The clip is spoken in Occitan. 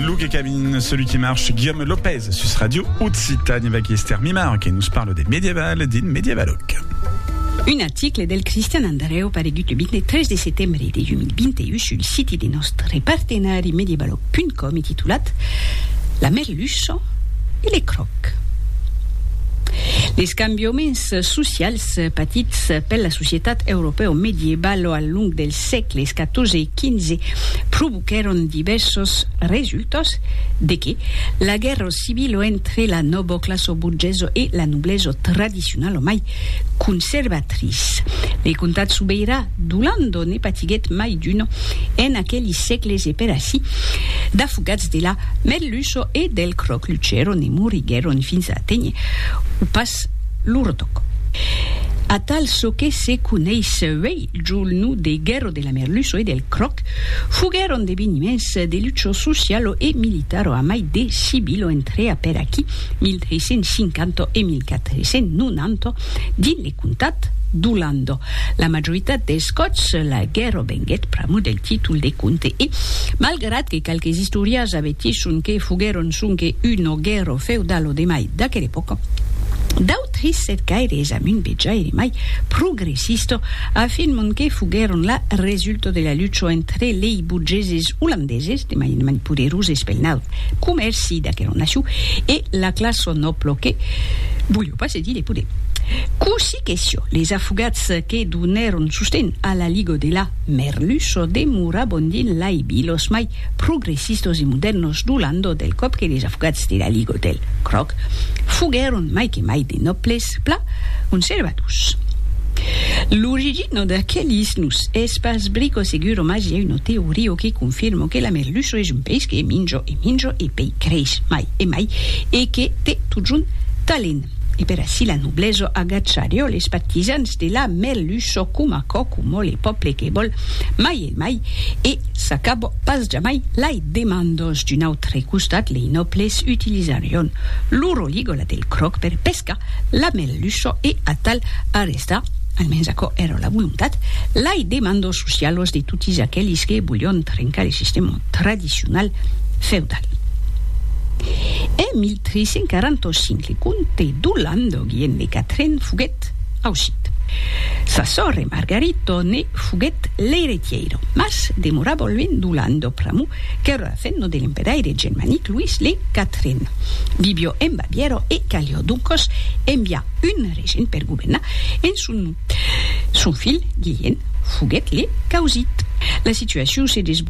Luke Cabin, celui qui marche, Guillaume Lopez, sus Radio Occitane, avec Esther Mimar, qui nous parle des médiévales, din médiévaloc. Un article del Christian Andreu paregut le 23 de setembre de 2021 sul siti de nostre partenari medievaloc.com e titulat La merluça e le croc. Les cambiaments socials patits per la societat europèo-medievalo al long dels sègles 14 e 2015 provoquèron divèrsos resultats de que la guèrra civila entre la noboclassa borgesa e la noblesa tradicionala mai conservatrice de comtat sobeirà d'Olanda ne patiguèt mai d'una en aqueli sègles e per aicí d'afogats de la merluça e del cròc luchèron e moriguèron fins a aténher o pas lo retoc atal çò que se coneis uèi. Julnu de Guerro de la Merluço e del Croc foguèron d'eveniments de lucho socialo e militaro amai de Sibilo entrea per aquí 1350 e 1490 dins le comtat d'Olando. La majoritat dels còps la guerro venguèt pr'amor del títol de comte e, malgrat que qualques istorias avetgisson que foguèron sonque uno guerro feudalo de mai d'aquela epòca, Trissèt gaire es amb un vejaire mai progressista, a fin mon que foguèron la resulta de la lucha entre lei burgeses olandeses, de mainement poderoses pel naut comèrci d'aquera nacion, e la classa nòbla que voliá pas cedir de poder. Cossí que siá, les afogats que donèron sosten a la Liga de la Merluça demorabon dins lai vilas mai progressistos e modèrnos du landau del còp que les afogats de la Liga del Cròc foguèron mai que mai de nòbles pla conservadors. L'origina d'aquelis nos es pas brico seguro mas i a una teoria que confirma que la merluça es un peish que minja e minja e pei creix mai e mai e que te totjorn talent e per ací la noblesa agacharió les partisans de la merluça coma còcomò le pòble que vòl mai Mai, e s'acabò pas jamai, lai demandos. D'un autre costat, lei nòbles utilisarion loro ligola del cròc per pescar la merluça e atal arrestar, almens aquò èra la volontat, lai demandos socialos de totis aquelis que volion trencar le sistèma tradicional feudal. En 1345, le comte d'Olanda, Guillem de Catren, foguèt aucit. Sa sòrre Margarita ne. Foguèt l'eiretièira, mas demorava luènh d'Olanda pr'amor qu'èra la femna de l'emperaire germanic Louis le Quatren. Vivió en Bavièra e calió doncas enviar un regent per governar en son nom. Son filh, Guilhèm, foguèt le causit. La situacion se desvolopèt